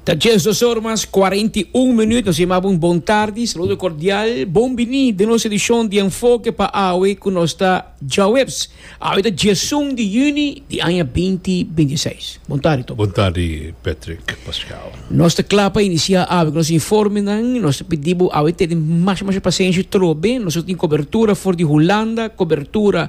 Ta dies dos or mas cuarenta y un minuut. Nos yamabo un bon tardi, saludo cordial, bon bini den nos edicion di Enfoke pa awe cu nos ta djaweps. Awe ta diesun di juni di aña binti binti seis. Bon tardi Toby. Bon tardi Patrick, Pascal. Nos ta cla pa inicia awe cu nos informenan. Nos ta pidi bo awe tene masha masha pasenshi trobe. Nos lo tin cobertura for di Hulanda, cobertura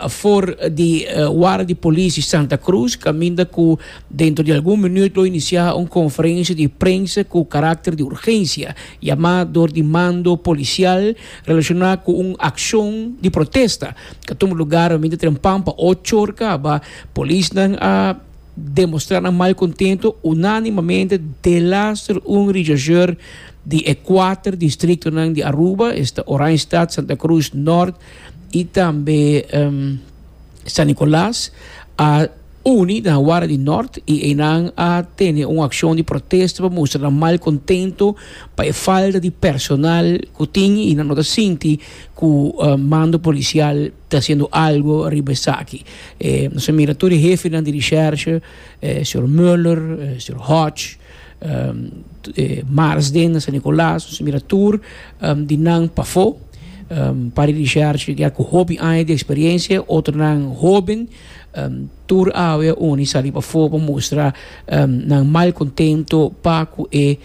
for di Wara di Polisi Santa Cruz, caminda cu dentro di algun minuut lo inicia un conferencia di prensa cu caracter di urgencia, yama door di mando policial relaciona cu un accion di protesta ca tuma lugar pa minte tren pampa ocho or caba. Polisnan a demostra nan mal contento unanimamente delaster un regiasseur di e cuater districtonan di Aruba, esta Oranjestad, Santa Cruz Noord, y tambe San Nicolas a uni na wara di Nort y eynan a tene un accion di protesta pa mustra nan mal contento pa e falta di personal cu tin y nan no ta sinti cu mando policial ta haciendo algo riba esaki. Nos a mira tur e hefinan di recherche, señor Mueller, señor Hodge. Marsden na San Nicolas nos a mira tur di nan pafó Padre Richard ya cu hopi aña di experiencia otronan hoben tur awe uni sali pafó pa mustra nan mal contento pa cu e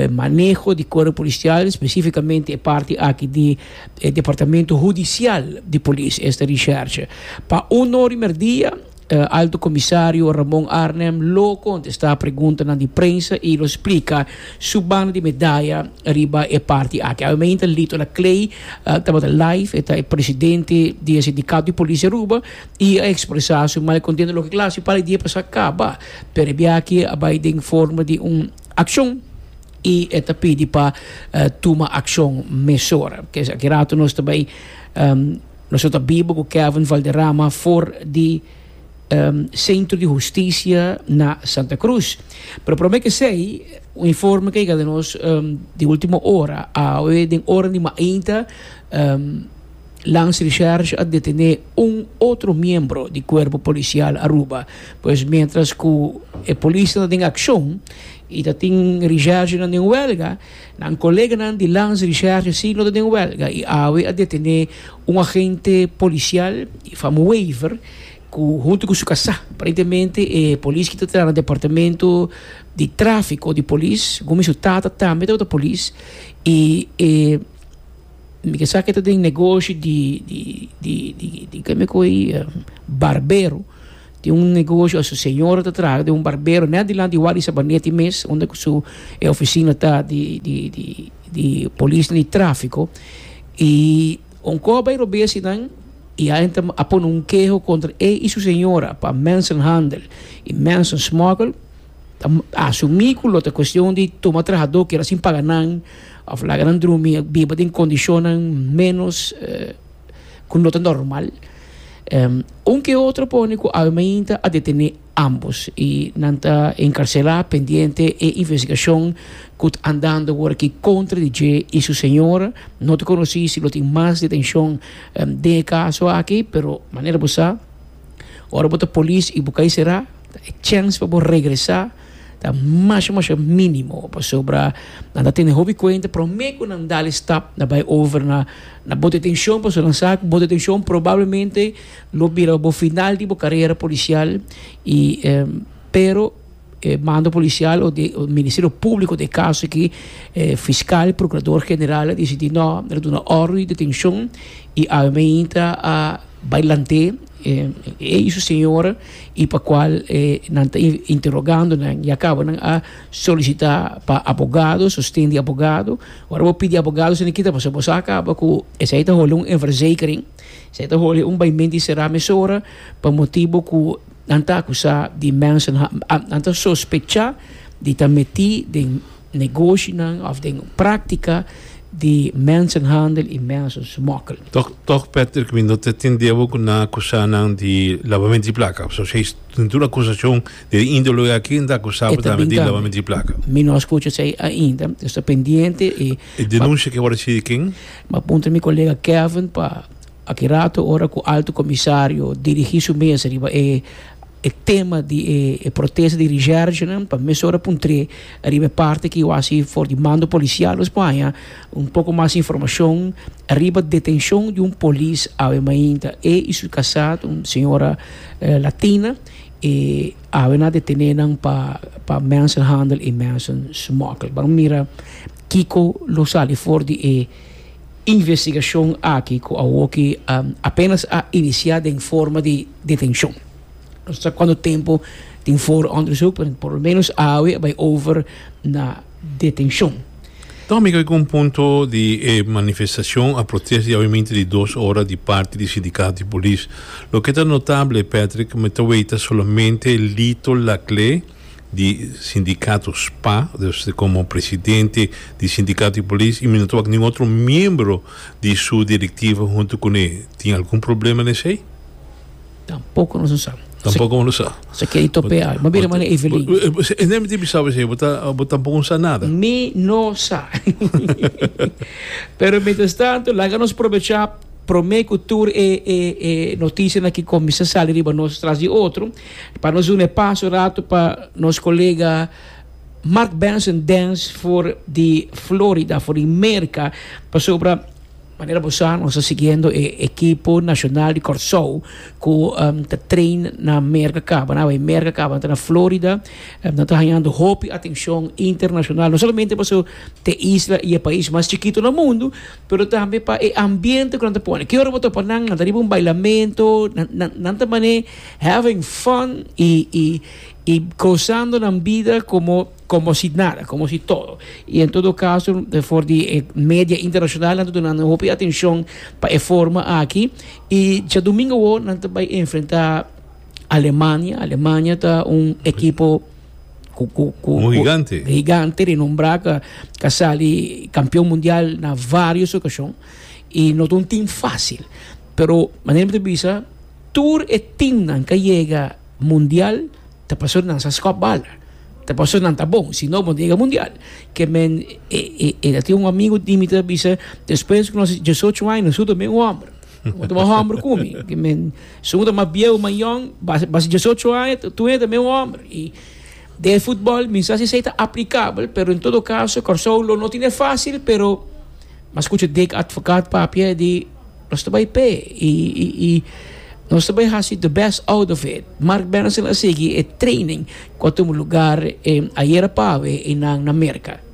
maneho di cuerpo policial specificamente e parti aki di e departamento hudicial di polis esta Richard pa un ora di merdia Ta Alto Comisario Ramon Arnhem lo contesta preguntanan di prensa y lo splica su banda di medaya riba e parti aki. Awe men ta Lito Laclay tabata live, e ta e presidente di e sindicato di Policia Aruba y a expresa su mal contento loke cla si para e dia pasa caba pero e biaaki a bay den forma di un accion y e ta pidi pa tuma accion mesora. Kesa aki rato nos ta bay. Nos lo ta biba ku Kevin Valderrama for di Sentro di Hustisia na Santa Cruz. Pero promé kesei, un informe ku a yega nos di ultimo ora, awe den ora di mainta Lance Recherche a detené un otro miembro di Kuerpo Polisial Aruba. Pues miéntras ku e polisnan ta den akshon i ta tin recherchenan den wèlga, Nan koleganan di Lans Richard Gessie no ta den wèlga i awe a detené un agente polisial di fama Wever ku huntu ku su kasá. Aparentemente e polis ki ta traha na departamento di tráfiko di polis, gomi su tata tambe tabata polis i e mi ke sa ke ta den negoshi di keme ku e barbero. Tin un negoshi a su señora ta traha den un barbero net dilanti di wak di Sabanetti mes unda ku su e ofisina ta di di di di polisnan di trafiko i Onkoa bai robé asinan i a entra a pone un keho kontra e i su señora pa mensenhandel i mensensmokkel ta asumí ku lo ta kuestion di tuma trahadó kera sin paga nan òf laga nan drumi biba den kondishonnan ménos. ku no ta normal. Un ke otro pone ku awe mainta a detené ambos i nan ta enkarselá pendiente e investigashon ku ta andando wor aki kontra di dje i su señora. No ta konosí si lo tin mas detenshon den e kaso aki, pero manera bo sa, ora bo ta polis i bo kai será, ta e chèns pa bo regresá. Ta masha masha minimo pasobra nan ta tene hopi cuenta prome cu nan dal e stap na bay over na na bote tension pasobra nan sa cu bote tension probablemente lo bira bo final di bo carera policial y pero e mando policial o de ministerio publico den e caso aki e fiscal y procurador general a dicidi no nan ta duna orden di detencion y awe men ainda a bay lante e eis señora. y pa cual nan ta interogando nan ya caba nan a solicita pa abogado sosten di abogado ora bo pidi abogado esaki no kita pasobra bo sa caba cu esaki ta holi un inverzekering esaki ta holi un baimenti sera mesora pa motibo cu nan ta acusa di mensaha nan ta sospecha di ta meti den negoshinan òf den práktika di mensenhandel i mensensmokkel. Tòg, tòg, Patrick, mi no ta tin debo ku nan akusá nan di labamentu di plaka. Pasobra si es tur akusashon di e índole hoy aki, nan ta akusá bo tambe di labamentu di plaka. Mi no a skucha esei ainda. Mi sta pendiente i. E denunsha ke a wòrdu hasi di ken? Mi a puntra mi kolega Kevin pa Aki rato ora ku Alto Komisario dirigí su mesa riba e e tema di e e protesta di resergenan pa mes ora puntr'é riba e parti ki wasi for di mando polisial nos por haña un poko mas informashon riba detenshon di un polis awe mainta e i su kasat un señora latina e awe nan a detené nan pa pa mensenhandel i mensensmokkel ban mira kiko lo sali for di e Investigashon aki ku awoki apenas a inisiá den forma di detenshon. Nos ta sa kuantu tempu tin for òndersuk, pero por lo ménos awe a bai over na detenshon. Ta amigo e gun punto di e manifestashon a protest di awemente di dos ora di parti di sindikato di polis. Loke ta notable, Patrick, me ta wei ta solamente Lito Laclé, di sindicato spa dus como presidente di sindicato di polis y mi no ta wak nin otro miembro di su directiva hunto con e tin algun problema na esey? Tampoco nos no sa. Tampoco bo no sa. Sa kere top e al. Bo mira mane Evelyn. Esei mi ta bisa bo esey bo tampoco no sa nada. Mi no sa. Pero mientras tanto laga nos probecha prome cu tur e e e noticianan ki cuminsa sali riba nos tras di otro. Pa nos duna e paso un ratu pa nos kolega Mark Benson Dens for di Florida, for di Merka, pasobra manera bo sa nos ta siguiendo e ekipo nashonal di Kòrsou ku ta train na Merka kaba. Nan awor Merka kaba nan ta na Florida, nan ta hañando hopi atenshon internashonal, no solamente pasobra ta e isla i e pais mas chikitu na mundu, pero tambe pa e ambiente ku nan ta pone. Ke ora bo topa nan, nan ta riba un bailamento, nan ta manera. Having fun y y y gozando nan bida como como si nada, como si todo. Y en todo caso for di e media internacional nan ta dunando un hopi atencion pa e forma aki. Y diadomingo wor nan ta bay enfrenta Alemania, Alemania ta un ekipo cu cu cu Un higante. cu higante renombrá cu cu a sali campeon mundial na varios ocasion y no ta un team facil pero manera mi ta bisa. Tur e teamnan ke yega mundial ta pasobra nan sa skop bala, ta pasobra nan ta bon, sino bo no ta yega mundial. Ke men, e, e, e ta tin un amigu di mi ku ta bisa, despues ku nos tin diesocho aña nos su tambe un hòmber. Bo ta mas hòmber ku mi. Ke men, si un ta mas bieu, mas yòn, basta, basta diesocho aña, ta, tur e tambe un hòmber. I den e futbòl mi no sa si esei ta aplikabel, pero en todo kaso Kòrsou lo no tine fásil, pero mi a skucha Dick Advocaat papia di. Nos ta bay p'e y y nos ta bay hasi the best out of it. Mark Berenson a sigui e training cu a tuma lugar ayer a pave y nan na Merca.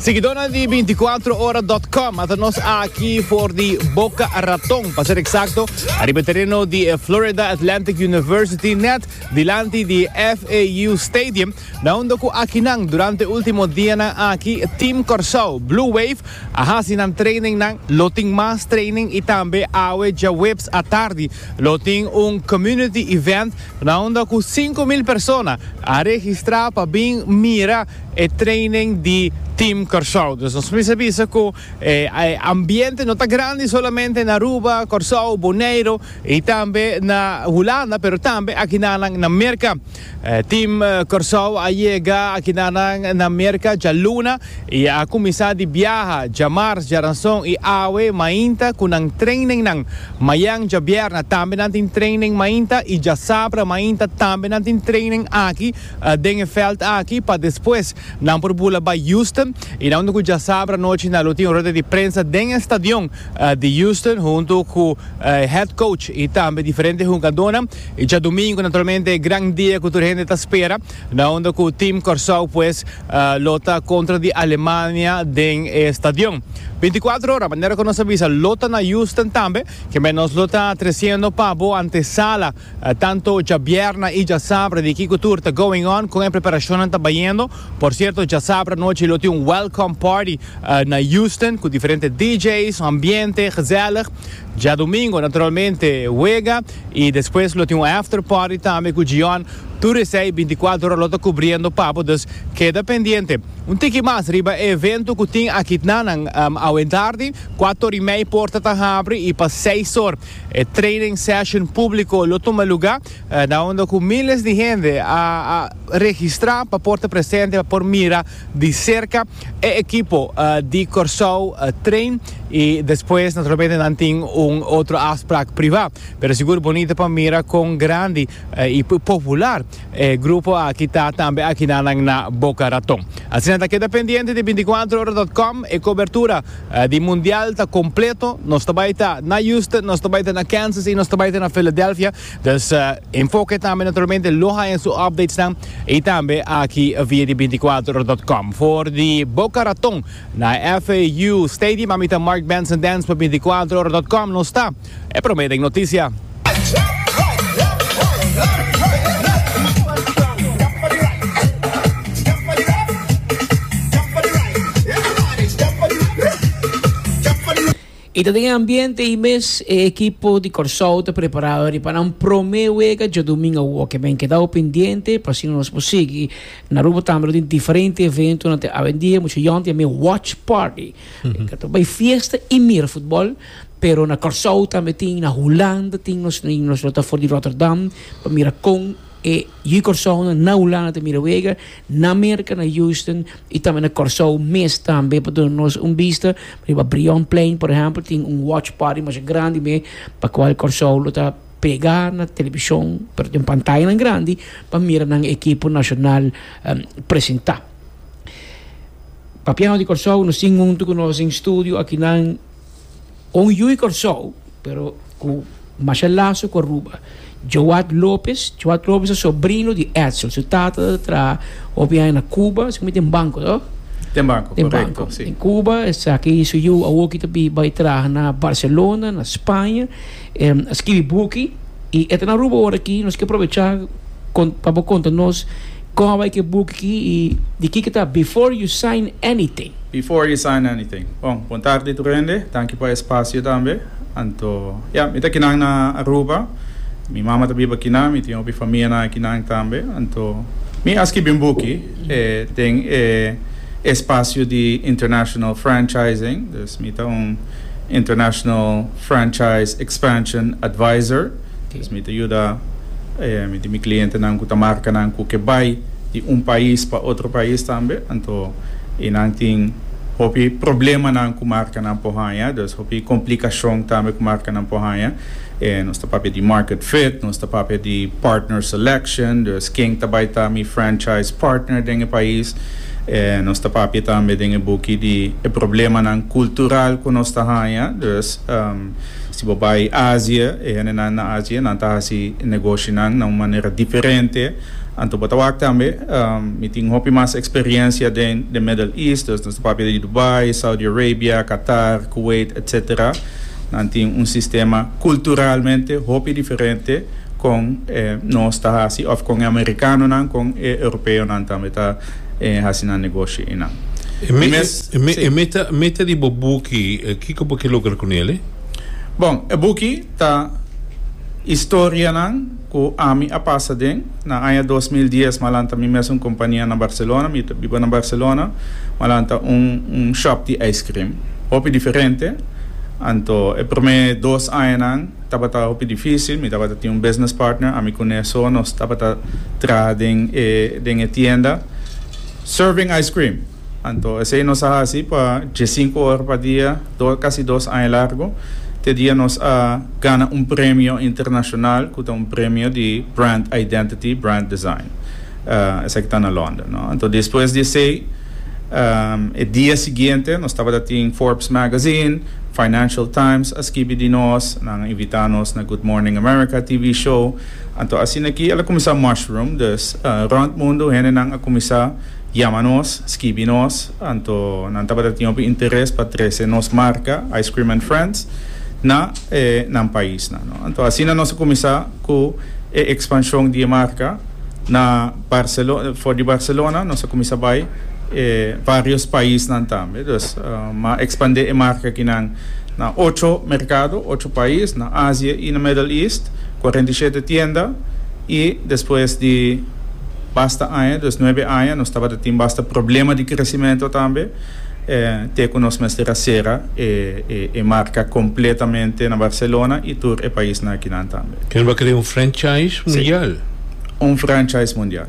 Seguidornan di binticuatroora.com, mata nos aki for di Boca Raton, pa ser exacto, ariba e tereno di e Florida Atlantic University, net dilanti di e FAU Stadium, Na hondo cu akinan durante ultimo dianan aki Team Kòrsou, Blue Wave, a haci nan trainingnan, lo tin mas training y tambe awe djaweps atardi lo tin un community event na hondo cu sinku mil persona a registra pa bin mira e training di Team Kòrsou. Dus nos mester bisa cu e ambiente no ta grandi solamente na Aruba, Kòrsou, Boneiru y tambe na Hulanda pero tambe akinanan na Merka. Team Kòrsou a yega akinanan na Merka djaluna i a kuminsá di biaha djamars, djaranson i awe mainta ku nan trainingnan. Mañan djabièrnè tambe nan tin training mainta i djasabra mainta tambe nan tin training aki den e vèlt aki pa despues nan por bula bai Houston i nan ku djasabra nochi nan lo tin rueda di prensa den e stadion di Houston huntu ku head coach i tambe diferente hungadónan. E djadumingu naturalmente e gran dia ku tur hende ta spera na unda ku Team Kòrsou pues lo ta kontra di Alemania den e stadion. Binticuatro ora, manera ku nos a bisa lo ta na Houston tambe, kemey nos lo ta tresiendo pa bo antesala tanto djabièrnè i djasabra di kiko tur ta going on, kon e preparashonnan ta bayendo. Por sierto, djasabra anochi lo tin un welcome party na Houston ku diferente DJ's, ambiente, gezèlig. Djadumingo naturalmente wega y despues lo tin un after party tambe cu Gion. Tur esey binticuatro ora lo ta cubriendo papo dus keda pendiente. Un tiki mas riba e evento cu tin akitnanan awe tardi cuato ora y mey porta ta habri y pa seis or e training session publico lo tuma luga na unda cu miles di hende a registra pa por ta presente pa por mira di cerca e equipo di Corsou Train y despues naturalmente nan tin un otro afspraak priva pero sigur bonita pa mira con grandi y popular e grupo aki ta tambe aki na nan na Boca Raton. Asina ta keda pendiente di binticuatrohoradotcom e cobertura di mundial ta completo nos ta bay ta na Houston nos ta bay ta na Kansas y nos ta bay ta na Philadelphia Dus enfoke tambe naturalmente lo haña su updatesnan i tambe aki via di binticuatro dot com. For di Boca Raton na FAU Stadium a mita Mark Benson Dance pa binticuatro dot com nos ta e prome den noticia. I ta den e ambiente ei mes e ekipo di Kòrsou ta preparado riba nan promé wega djadumingu awor. Ke men kedau pendiente pa asina nos por sigui na Aruba tambe. Lo tin diferente eventonan te awendia, mucha yon tin amé watch party, ke ta bai fiesta i mira futbòl. Pero na Kòrsou tambe tin, na Hulanda tin nos, nos lo ta for di Rotterdam pa mira kon. E yu Kòrsounan na Hulanda ta mira wega, na Merka na Houston i tambe na Kòrsou mes tambe pa duna nos un bista. Riba Brionplein, por ehèmpel, tin un watch party masha grandi me pa kual Kòrsou lo ta pregá na televishon, pero den pantayanan grandi pa mira nan ekipo nashonal presentá. Papiao di Kòrsou, nos tin huntu ku nos den studio akinan. Un yu di Kòrsou pero ku masha laso ku Aruba, Joad Lopez. Joad Lopez ta sobrino di Edsel. Su tata ta traha hopi aña na Kuba, esaki mi tin banko to? Tin banko, korekto. Tin banko den Kuba. Esaki su yu awor ki ta bai traha na Barselona, na Spaña. E skibi buki i e ta na Aruba ora aki. Nos ke probecha pa bo konta nos kon a bai ku e buki aki i di kiko ta Before You Sign Anything. Before You Sign Anything. Bon, bon tardi tur hende. Danki pa e spasio tambe. Anto, ya, mi ta aki nan na Aruba. Mi mama ta biba aki nan. Mi tin hopi famianan aki nan tambe. Anto, mi a skibi un buki den e spasio di international franchising. Dus mi ta un. International Franchise Expansion Advisor, dus mi ta yuda di mi klientenan ku ta marka nan ku ke bai di un pais pa otro pais tambe, anto i nan tin hopi problemanan ku markanan por haña, dus hopi komplikashon tambe ku markanan por haña. Nos ta papia di market fit, nos ta papia di partner selection, dus ken ta bai ta mi franchise partner den e pais. Nos ta papia tambe den e buki di e problemanan cultural cu nos ta haña, dus si bo bai Asia, e hendenan na Asia nan ta haci e negoshinan na un manera diferente. Anto bo ta wak tambe, mi tin hopi mas experiencia den de Middle East, dus nos ta papia di Dubai, Saudi Arabia, Qatar, Kuwait, etc. Nan tin un sistema culturalmente hopi diferente con e nos ta haci of con e Americanonan, con e Europeonan tambe ta haci nan negoshi einan. E mes, e meta, meta di bo buki, kico bo ke logra cu nele? Bon, e buki ta historianan. Ku ami a pasa den. Na aña dos mil dies malan ta mi mes un kompania na Barcelona. Mi ta biba na Barcelona. Malan ta un un shòp di ijskrim. Hopi diferente. Anto e promé dos añanan tabata hopi difísil. Mi tabata tin un business partner. Ami ku Nea so nos tabata traha den e den e tienda. Serving ijskrim. Anto esei nos a hasi pa dje sinku ora pa dia, dos, kasi dos aña largu, te dia nos a gana un premio internashonal ku ta un premio di brand identity, brand design. Esei ku ta na London, no. Anto despues di esei, e dia siguiente nos tabata tin Forbes Magazine, Financial Times a skibi di nos, nan a invita nos na Good Morning America TV show. Anto asina aki el a kuminsá mushroom, dus rònt mundu hendenan a kuminsá. Yama nos, skibi nos, anto nan tabata tin hopi interes pa trese nos marka Ice Cream and Friends na e nan paisnan. Anto asina nos a kuminsá ku e ekspanshon di e marka na Barcelo, for di Barcelona, nos a kuminsá bai e varios paisnan tambe. Dus mi a ekspandé e marka akinan na ocho merkado, ocho pais, na Asia i na Middle East, kuarenta i shete tienda, i despues di. Basta aña, dos nuebe aña, nos tabata tin basta problema di kresimentu tambe, te ku nos mester a sera e marka kompletamente na Barcelona i tur e paisnan akinan tambe. Kende bo a kere un franchise mundial? Si, un franchise mundial.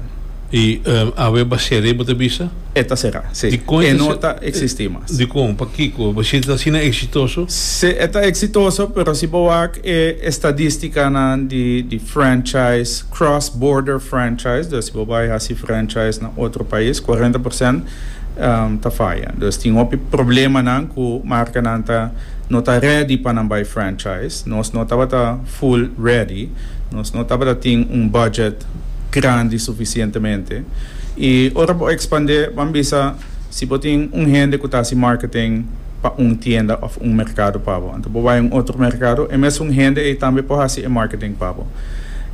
I awe bo a sera ei, bo ta bisa? E ta sera, si. E no ta eksistí mas. Dikon? Pakiko? Si ta asina eksitoso? Si, e ta eksitoso, pero si bo wak e estadístikanan di franchise. Cross Border Franchise, dus si bo bai hasi franchise na otro pais, cuarenta por cent ta faya. Dus tin hopi problemanan cu marcanan ta no ta ready pa nan bai franchise. Nos no tabata full ready, nos no tabata tin un budget grandi suficientemente. Y ora bo expande, ban bisa. Si bo tin un hende ku ta hasi marketing pa un tienda òf un merkado pa bo, anto bo bai un otro merkado, e mesun hende ei tambe por hasi e marketing pa bo.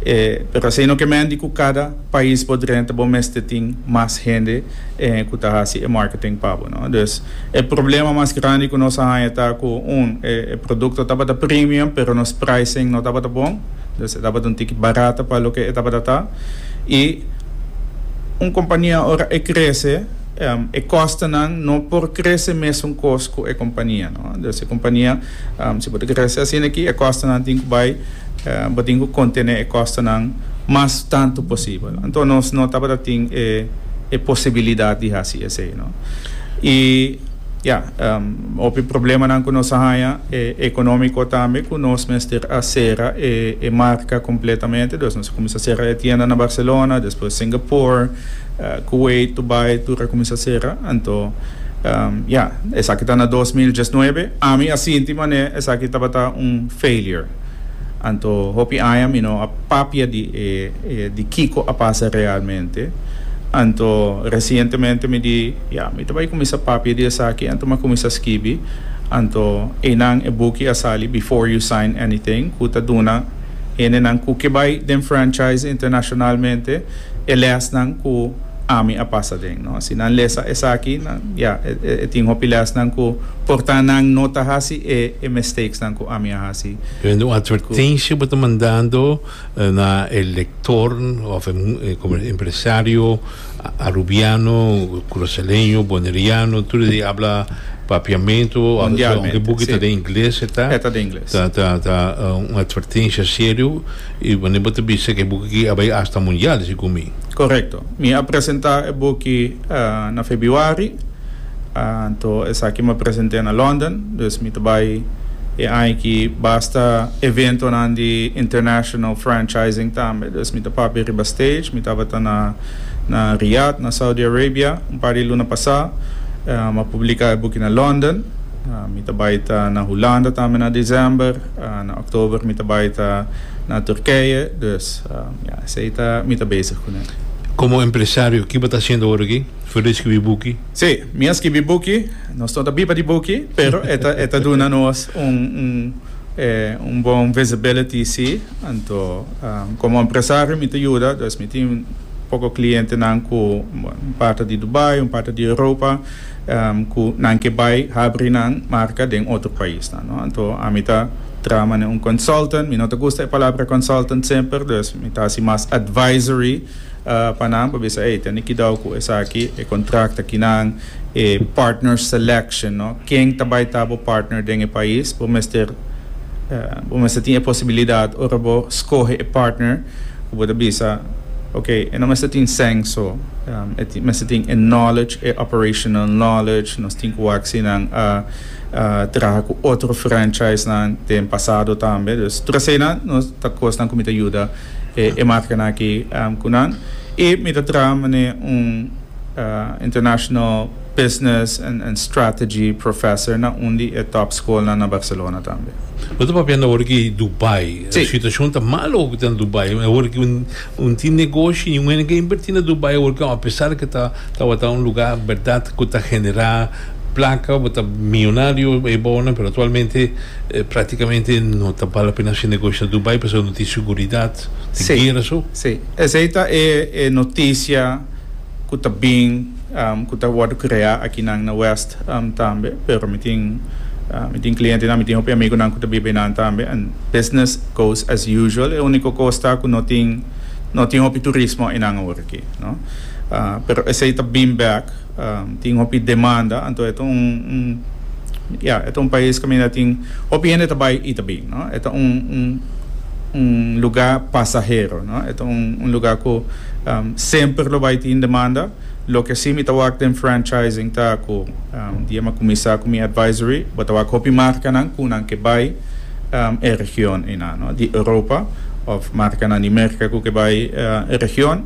E, pero esei no ke menti ku kada pais bo drenta bo mester tin mas hende ku ta hasi e marketing pa bo, no. Dus, e problema mas grandi ku nos a haña ta ku, un, e produkto tabata premium pero nos pricing no tabata bon, dus e tabata un tiki barata pa loke e tabata ta, i, Un kompania ora e krese, e kòstenan no por krese mesun kos ku e kompania. Dòs e kompania, si bo ta krese asina aki, e kòstenan tin ku bai, bo tin ku kontené e kòstenan mas tantu posibel. Anto nos no tabata tin e posibilidat di hasi esei. I. Ya, hopi problemanan cu nos a haña e economico tambe cu nos mester a cera e marca completamente. Dus nos a cuminsa cera e tienda na Barcelona, despues Singapore, Kuwait, Dubai, tur a cuminsa cera. Anto, ya, esaki ta na dos mil diesnuebe. Ami a sinti mane esaki tabata un failure. Anto hopi aña mi no a papia di e di kiko a pasa realmente. Anto resientemente mi di, ya, mi ta bai kuminsá papia di esaki, anto mi a kuminsá skibi. Anto einan e buki a sali Before You Sign Anything, ku ta duna hendenan ku ke bai den franchise internashonalmente e lèsnan ku ami a pasa den, no? Si nan lesa esaki, nan, ya, e, e, e tin hopi lèsnan ku por ta nan no ta hasi e, e mistakesnan ku ami a hasi. Yo hende un atvertensia bo ta mandando na e lektor òf e, e kome, empresario arubiano, krusaleño, boneriano, tur esei habla Papiamentu, a vese aunke Mundialmente, buki ta si. den ingles e ta, E ta den ingles. ta, ta, ta un atvertensia serio i wanneer bo ta bisa ku e buki aki a bai asta mundial, esei ku mi. Korekto. Mi a presentá e boki na febiuari, anto esaki mi a present'é na London, dus mi ta bai e añaki basta eventonan di international franchising tambe. Dus mi ta papia riba stage. Mi tabata na na Riyad, na Saudi Arabia, un par di luna pasá. Mi a publiká e boki na London. Mi ta bai ta na Hulanda tambe na desèmber. Na òktober mi ta bai ta na Turkije. Dus. Ya, esei ta mi ta bezig ku nan. Komo empresario, ki bo ta hasiendo ora aki for di skibi buki? Sí, mi a skibi buki. Nos no ta biba di buki, pero e ta e ta duna nos un un un bon visibility sí. Anto komo empresario mi ta yuda, dus mi tin poko klientenan ku un parti di Dubai, un parti di Europa. cu nan ke bay habri nan marca den otro paisnan, no? Anto ami ta trama ne un consultant, mi no ta gusta e palabra consultant semper, dus mi ta haci mas advisory pa nan pa bisa ey, tene kidao cu esaki, e contract aki nan, e partner selection, no? Ken ta bay ta bo partner den e pais, bo mester, bo mester tin e posibilidad ora bo scoge e partner. Ku bo ta bisa, Ok, e no mester tin sèn so, e mester tin e knowledge, e operational knowledge. Nos tin ku wak si nan a traha ku otro franchisenan den pasado tambe. Dus tur eseinan no ta kosnan ku mi ta yuda e markanan aki ku nan. I mi ta traha mané un international. Business and Strategy Professor na un di e top skolnan na Barcelona tambe. Bo ta papiando awor di Dubai. Si. Situashon ta malo awor ku ta na Dubai. Awor ku un tin negoshi i un hende ke inverti na Dubai awor ku apesar ke ta tabata un luga bèrdat ku ta genera plaka, bo ta millonario e bawonan pero aktualmente praktikamente no ta bal apena haci negoshi na Dubai pasobra no tin seguridat, tin guera su. Si. Esei ta e notisia ku ta bin. cu ta wordo crea akinan na West tambe, pero mi tin mi tin clientenan, mi tin hopi amigunan cu ta biba einan tambe, and business goes as usual, e unico cos ta cu no tin no tin hopi turismo einan awor aki, no. Pero esey ta bin bek, tin hopi demanda, anto e ta un un ya e ta un pais caminda tin hopi hende ta bay y ta bin, no. E ta un un un lugar pasahero, no, e ta un un lugar cu. Semper lo bai tin demanda. Loke sí mi ta wak den franchising ta cu di e mi a cuminsa cu mi advisory, bo ta wak hopi marcanan cu nan ke bai e region eynan, no, di Europa of marcanan di Merca cu ke bai e region.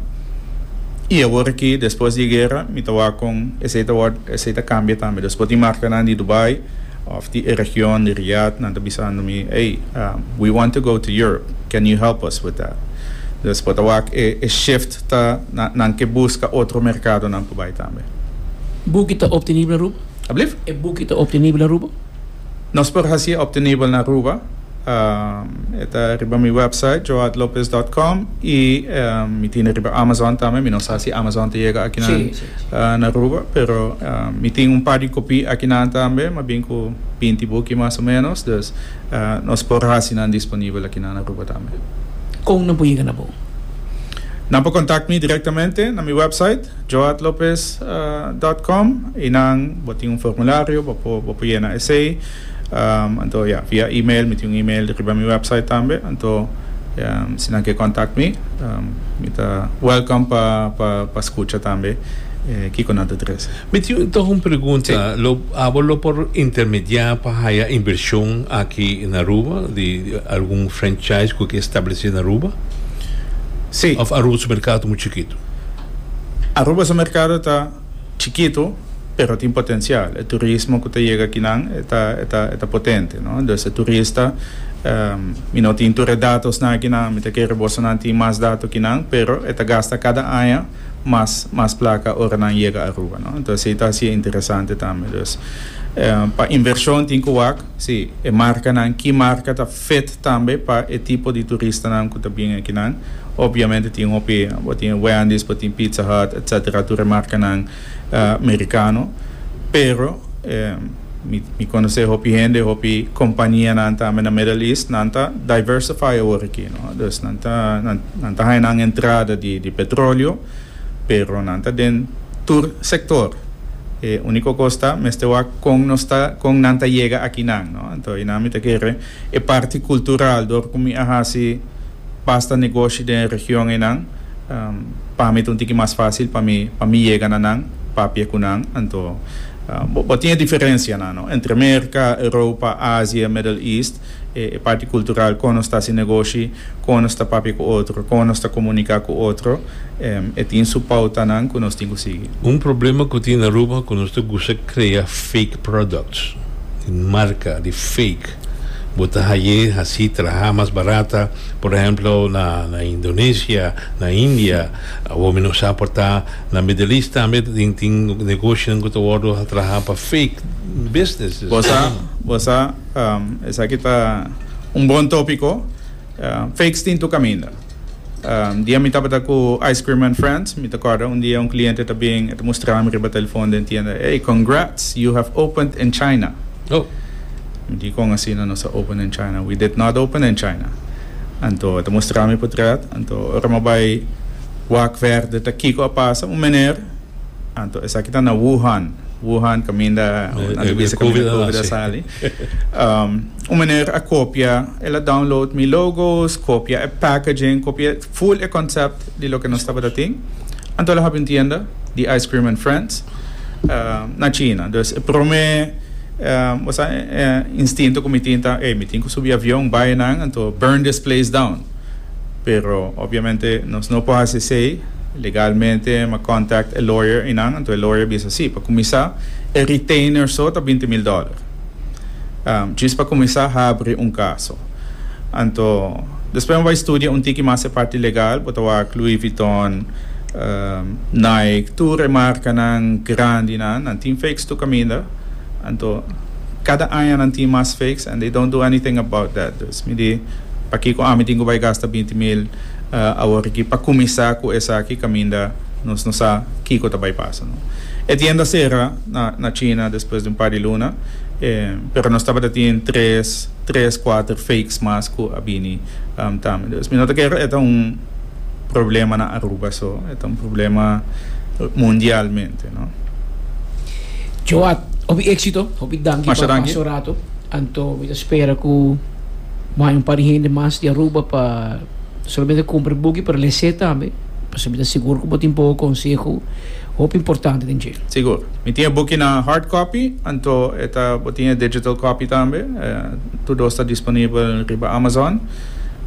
Y awor aki, despues di e guera, mi ta wak con esey ta word, esey ta cambia tambe. Dus bo tin marcanan di Dubai. Of di e region di Riyad nan ta bisando mi, Ey, we want to go to Europe, can you help us with that? Dus por ta wak e e shift ta nan nan ke buska otro merkadonan pa bai tambe. Buki ta optenibel Aruba? Alblieft? E buki ta optenibel Aruba? Nos por hasi e optenibel na Aruba. E ta riba mi website joadlopez dot com y mi tin riba Amazon tambe, mi no sa si Amazon ta yega akinan na Aruba pero mi tin un par di kopí akinan tambe, mas bien ku binti buki mas o menos, dus nos por hasi nan disponibel akinan na Aruba tambe. Kon nan por yega na bo? Nan por kontak mi direktamente na mi website joadlopez dot com y nan bo tin un formulario bo por yena esei. Anto ya, via email, mi tin un email riba mi website tambe, anto si nan ke contact mi, mi ta welcome pa pa scucha tambe kiko nan ta trece. Mi tin toch un pregunta, lo abo lo por intermedia pa haya inversion aki na Aruba di algun franchise cu ke establece na Aruba? Si. Of Aruba su mercado ta muy chikito? Aruba su mercado ta. chikito pero tin potencial e turismo cu ta yega akinan e ta e ta e ta potente no entonces e turista mi no tin tur e datosnan akinan mi ta kere boso nan tin mas dato akinan pero e ta gasta cada aña mas mas placa ora nan yega Aruba no entonces ey ta haci e interesante tambe dus pa inversion tin cu wak si e marcanan ki marca ta Fit tambe pa e tipo di turistanan ku ta bini akinan. Opviamente tin hopi, bo tin Wendy's, bo tin Pizza Hut, etc. Tur e markanan merikano. Pero mi mi konosé hopi hende, hopi kompanianan tambe na Middle East, nan ta diversify awor aki, no. Dus nan ta nan ta haña nan entrada di di petroleo. Pero nan ta den tur sector. E unico cos ta mester wak con nos ta con nan ta yega aki nan, no? Anto y nan mi ta kere e parti cultural dor cu mi a haci basta negoshi den e region eynan pa mi ta un tiki mas facil pa mi pa mi yega na nan papia cu nan. Anto bo tin e diferencianan, no? Entre Merca, Europa, Asia, Middle East. e parti cultural, con nos ta haci negoshi, con nos ta papia cu otro, con nos ta comunica cu otro, e tin su pautanan cu nos tin cu sigui. Un problema cu tin na Aruba cu nos ta gusta crea fake products, di marca, di fake. Bo ta haye, haci, traha mas barata, por ehemplo, na na Indonesia, na India, awomen nos sa por ta na Middle East tambe tin tin negoshinan cu ta wordo traha pa fake businesses. Bo sa, bo sa. Esaki ta un bon tópiko. Fakes tin tur kaminda. Dia mi tabata ku Ice Cream and Friends, mi ta kòrda un dia un kliente ta bin, e ta mustra mi riba telefon den tienda, Hey, congrats! You have opened in China! Oh! Mi di, Kon asina nos a open in China? We did not open in China! Anto e ta mustra mi putret. Anto ora mi a bai wak verde ta kiko a pasa? Un mener. Anto esaki ta na Wuhan, Wuhan kaminda un anto bisa kaminda COVID a sali. Um, un meneer a kopia, el a download mi logos, kopia e packaging, kopia full e concept di loke nos tabata tin. Anto el a habi un tienda di Ice Cream and Friends uh, na China. Dus e prome um, bosa, eh, instinto ku mi tin ta, ey, mi tin ku subi avion, bai nan, anto burn this place down. pero obviamente nos no por haci esey legalmente ma contact e lawyer eynan anto e lawyer a bisa si pa cuminsa e retainer so ta binti mil dollar djis pa cuminsa habri un caso anto despues mi bay studia un tiki mas e parti legal bo ta wak Louis Vuitton Nike tur e marcanan grandi nan nan tin fakes tur caminda anto cada aña nan tin mas fakes and they don't do anything about that. Mi di, Pakico ami tin cu bay gasta binti mil aworiki pa cuminsa cu esaki caminda nos no sa kico ta bay pasa? No. E tienda cera na China despues di un par di luna, pero nos tabata tin tres, tres, cuater fakes mas cu a bini tambe. Entonces mi no ta kere e ta un. problema na Aruba so, e ta un problema mundialmente, no? Joat, hopi éksito, hopi danki pa pas so rato. Anto mi ta spera ku bo haña un par di hende mas di Aruba pa no solamente kumpra e buki pero les'é tambe, pasobra mi ta sigur ku bo tin bobo konseho hopi importante den dje. Sigur. Mi tin e buki na hard copy, anto e ta bo tin e digital copy tambe, tur dos ta disponibel riba Amazon.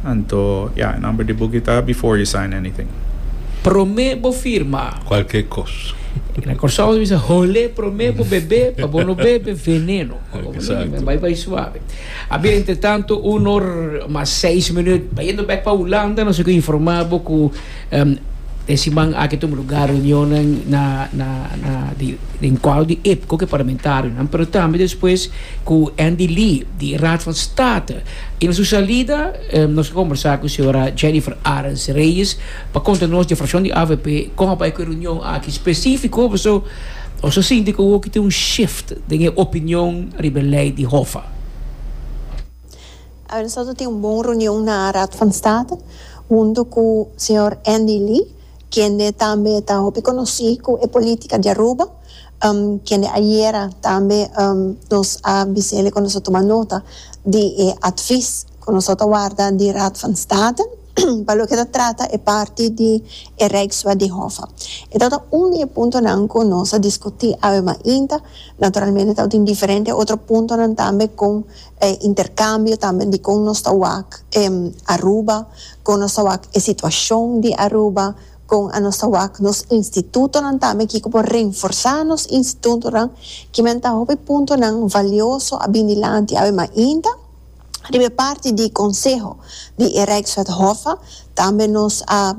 Anto, ya, e number di buki ta before you sign anything. Prome bo firma. Cualkier cos. Na Corsao mi bisa hole prome bo bebe pa bo no bebe veneno. Exacto. Bai bai suave. A bien, entre tanto, un or mas seis minuut bayendo bek pa Hulanda, nos a ke informa bo ku em, den siman aki tuma lugar reunionnan na, na, na di, den kuadro di IPCO, ku e parlamentarionan, pero tambe despues ku Andy Lee di Raad van State I na su salida nos a kombersá ku señora Jennifer Arens Reyes pa konta nos di frakshon di avp kon a bai ku e reunion aki spesífiko paso nos a sinti ku oki ta un shift den e opinion riba e lei di Hoffa. Aver nosotros a tin un bon reunion na Raad van State hunto ku señor Andy Lee kende tambe ta hopi konosí ku e polítika di Aruba. kende ayera tambe nos a bisel'e ku nos a tuma nota di e atvis ku nos a ta warda di Raad van State pa loke ta trata e parti di e Rijkswet di Hoffa. E tabata un di e puntonan ku nos a diskutí awemayinta, naturalmente tabata tin diferente otro puntonan tambe kon e interkambio tambe dikon nos ta wak Aruba, kon nos ta wak e situashon di Aruba, Kon a nos ta wak nos institutonan tambe? Kiko por renforsá nos institutonan? Kimen ta hopi puntonan valioso a bin di lanti awe mainta? Riba e parti di konseho di e Rijkswet Hof tambe nos a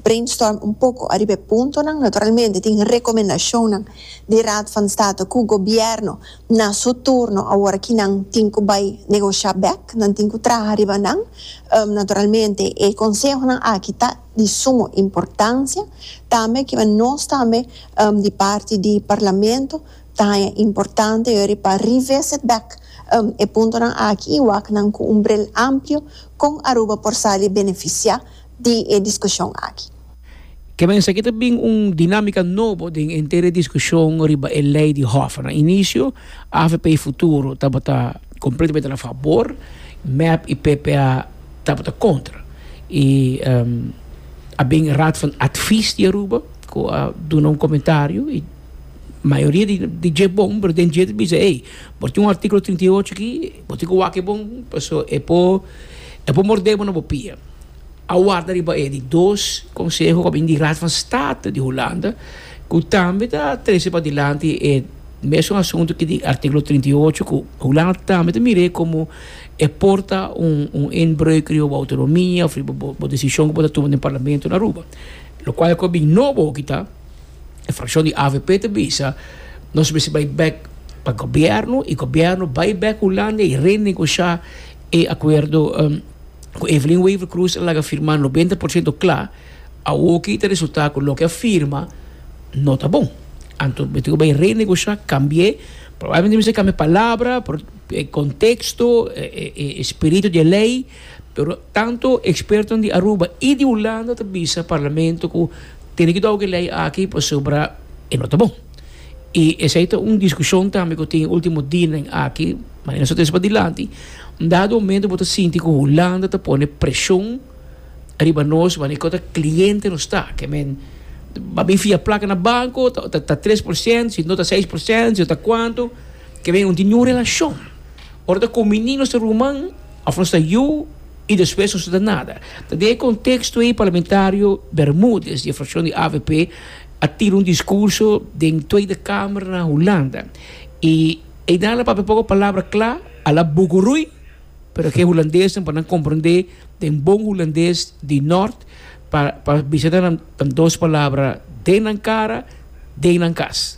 brainstorm un poko ariba e puntonan. Naturalmente tin rekomendashonnan di Raad van State ku gobièrnu na su turno awor aki nan tin ku bai negoshá bèk, nan tin ku traha riba nan. Naturalmente e konsehonan aki ta. di sumo importancia tambe kiba nos tambe di parti di Parlamento taña importante yori pa revisit back e puntonan aki y wak nan cu un bril amplio con Aruba por sali beneficia di e discusion aki. Ke men esaki ta bin un dinamica nobo den enter e discusion riba e ley di hof. Na inicio avp Futuro tabata completamente na fabor, mep y ppa. tabata kontra i a bin Raad van Advies di Aruba ku a duna un komentario i mayoria di di dje bon pero den dje ta bisa ey bo tin un artíkulo trinta i ocho aki bo tin ku wak e bon paso e por e por mordé bo na bo pia a warda riba e di dos konseho ku a bin di Raad van State di Hulanda ku tambe ta trese padilanti e mesun asuntu ki di artíkulo trinta i ocho ku Hulanda tambe ta mira e komo e por ta un un inbreuk riba bo autonomia of riba bo bo decision ku bo ta tuma den parlamento na Aruba. Lokual ku a bin nobo hoki ta e frakshon di avp ta bisa nos mester bai bek pa gobièrnu i gobièrnu bai bek Hulanda i renegoshá e akuerdo ku Evelyn Wever Croes a laga firmá nobenta por shento kla. Awo ki ta resultá ku loke a firma no ta bon. Anto mester ku bai renegoshá, kambi'é, probablemente mester kambia palabra. E konteksto, e spiritu di e lei, pero tantu ekspertonan di Aruba i di Hulanda ta bisa parlamento ku tene ki dou e lei aki pasobra e no ta bon. I esei ta un diskushon tambe ku tin e último dianan aki, ma e no sa ta esa padilanti, un dado momento bo ta sinti ku Hulanda ta pone preshon riba nos manera kon ta kliente nos ta, ke men a bin fia plaka na banko, ta tres por sènt, si no ta seis por sènt, si no ta kuantu. Ke ben un tin yu relashon. Ora ta kuminí nos ta ruman òf nos ta yu i despues nos no ta nada. Ta den e konteksto ei parlamentario Bermudez di e frakshon di avp a tira un diskurso den Tweede Kamer na Hulanda i ei dal a papia poko palabra kla, a la buguruy, pero ke hulandesnan pa nan komprendé den bon hulandes di nort pa pa bisa nan dos palabra den nan kara, den nan kas.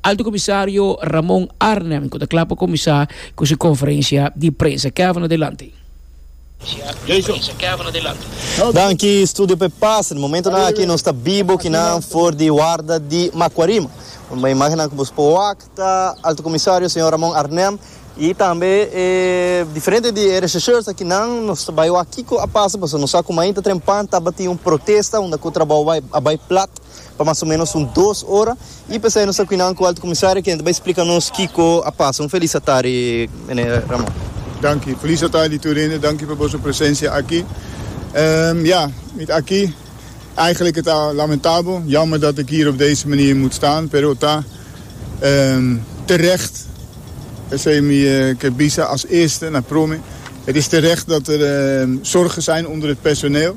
Alto Comisario Ramon Arnhem cu ta cla pa cuminsa cu su conferencia di prensa. Kevin adelante. Danki Studio p'e pas. Na momentonan aki nos ta bibo kinan for di warda di Macuarima. Urba imagennan cu bo por wak ta Alto Comisario Señor Ramon Arnhem y tambe e diferente di e rechercheurs aki nan. Nos ta bay wak kico a pasa pasobra nos sa cu mainta trempan tabatin un protesta unda cu trabao a bay plat pa mas o menos un dos ora y p'esei nos a cuinan cu Alto Comisario quien ta bay splica nos kico a pasa. Un feliz atari mene Ramon. Danki. Feliz atari tur hende. Danki pa boso presencia aki. Ya, mi ta aki. Eigenlijk e ta lamentabel, jammer dat ik hier op deze manier moet staan, pero ta terecht. P'esei mi ke bisa as eerste na Prome. Het is terecht dat er zorgen zijn onder het personeel.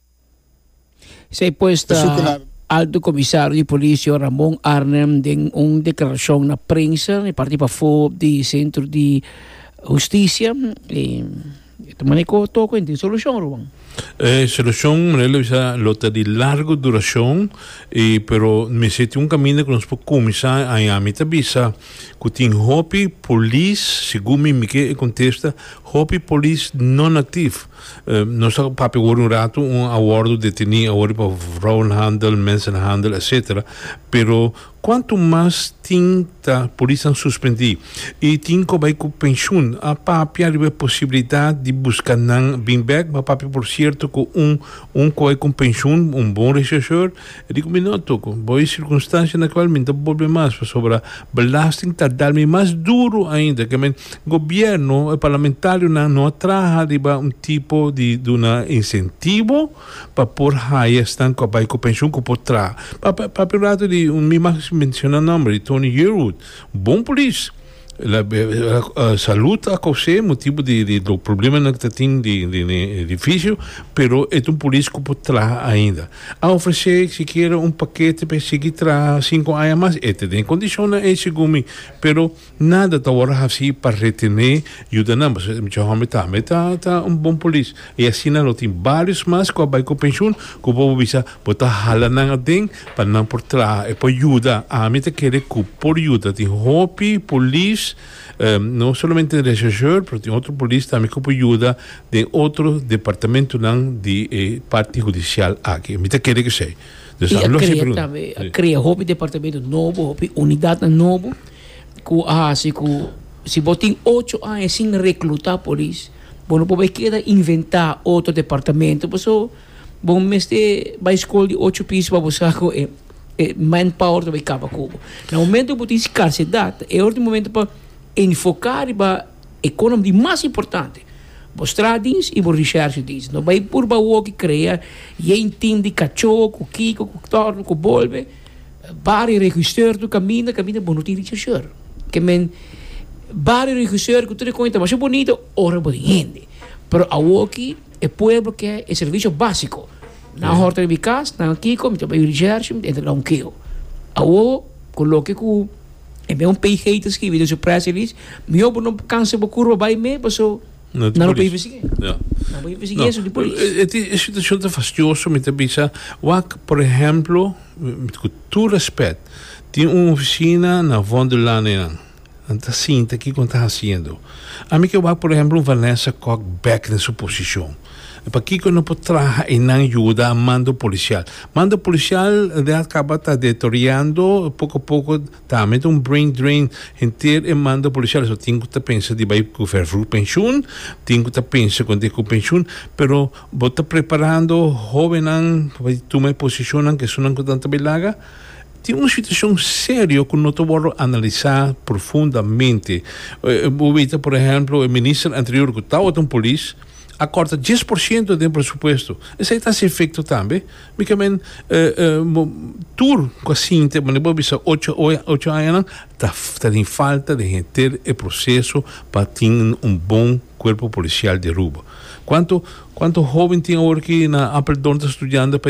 Esei pues ta Alto Comisario di Policia Ramon Arnhem den un declaracion na prensa e parti pa for di Centro di Justicia e ta maneco toco en tin solucion Ruben. E solucion manera lo bisa lo ta di largo duracion e pero mester tin un caminda cu nos por cuminsa aña mi ta bisa cu tin hopi polis segun mi mi ke e contesta hopi polis non actif. Nos ta papia awor un ratu un awordo deteni awor pa vrouwenhandel, mensenhandel etc. Pero cuanto mas tin ta polisnan suspendi y tin cu a bay cu pensioen a papia riba e posibilidad di busca nan bin bek, a papia por cierto cu un un cu a bay cu un pensioen, un bon rechercheur, E di ku mi no toko bo e sirkunstansia na kual mi ta bolbe mas pasobra belasting ta dal mi mas duru ainda. Ke men gobièrnu, e parlamentarionan no a traha riba un tipo di duna insentivo pa por haya esnan ku a bai ku penshun ku por traha. Papia un ratu di un mi mas menshona nòmber di Tony Yearwood, bon polis. Salud ta cose motibo di di lo probleman cu ta tin di di ne edificio pero e ta un polis cu por traha ainda a ofrece sikiera un pakete pa e sigui traha cinco aña mas e ta den condicionnan ey segun mi pero nada ta wor hasi pa retene yudanan pasobra e hombrenan tambe ta ta un bon polis. I asina lo tin barios mas cu a bai cu pensioen cu bo por bisa bo ta hala nan aden pa nan por traha e por yuda. Ami ta kere cu por yuda. Tin hopi polis, no solamente den rechercheur, pero tin otro polis tambe cu por yuda den otro departamentonan di e parti hudicial aki. Mi ta kere kesey. Dus a los e pregunta. I a crea hopi departamento nobo, hopi unidadnan nobo cu a haci cu si bo tin ocho aña sin recluta polis. Bo no por bai keda inventá otro departamento paso bo mester bai skol di ocho piso pa bo sa ku e e manpower ta bai kaba ku bo. Na momento ku bo tin skarsidat e ora tin momento pa enfoká riba e konan di mas importante, bo stratdiens i bo rishershediens. No bai purba awoki krea yen tim di kachó ku kiko ku tòrno ku bolbe. Barrio Regisseur tu caminda caminda bo no tin Regisseur ke men Barrio Regisseur cu tur e cosa ta masha bonito ora bo tin hende pero awor aki e pueblo ke e servicio basico nan a horta riba e cas nan a kiko mi ta bay Recherche mi ta entra dau keo awor con loke cu e mismo PG ta scribi den su Press Release miyor bo no cansa bo curva bay me pasobra. No te polis. Nan no por persiguié eso di polis. E situacion ta fastioso mi ta bisa wak por ehemplo cu tur respet tin un oficina na Von der Lande nan nan ta sinta kico nan ta haciendo a mi ke wak por ehemplo un Vanessa Kok bek den su posicion pakico no por traha enan yuda mando policial mando policial al caba ta detoriando poco poco. Ta met un brain drain henter e manda policial eso tin cu ta pensa di bay cu vervroeg pensioen tin cu ta pensa con decu pensioen pero bo ta preparando hobennan pa bay tuma e posicionnan que esonan cu nan ta bay laga tin un situacion serio cu no ta wordo analisa profundamente bo weta por ehemplo e minister anterior cu tawat un polis a corta dies por ciento den presupuesto esai ta haci efecto tambe. Mi ta men tur cu a sinti manda bo a bisa ocho ocho añanan ta ta den falta den henter e proceso pa tin un bon cuerpo policial di Aruba cuanto cuanto hoben tin awor ki na Apeldoorn ta studiando pa.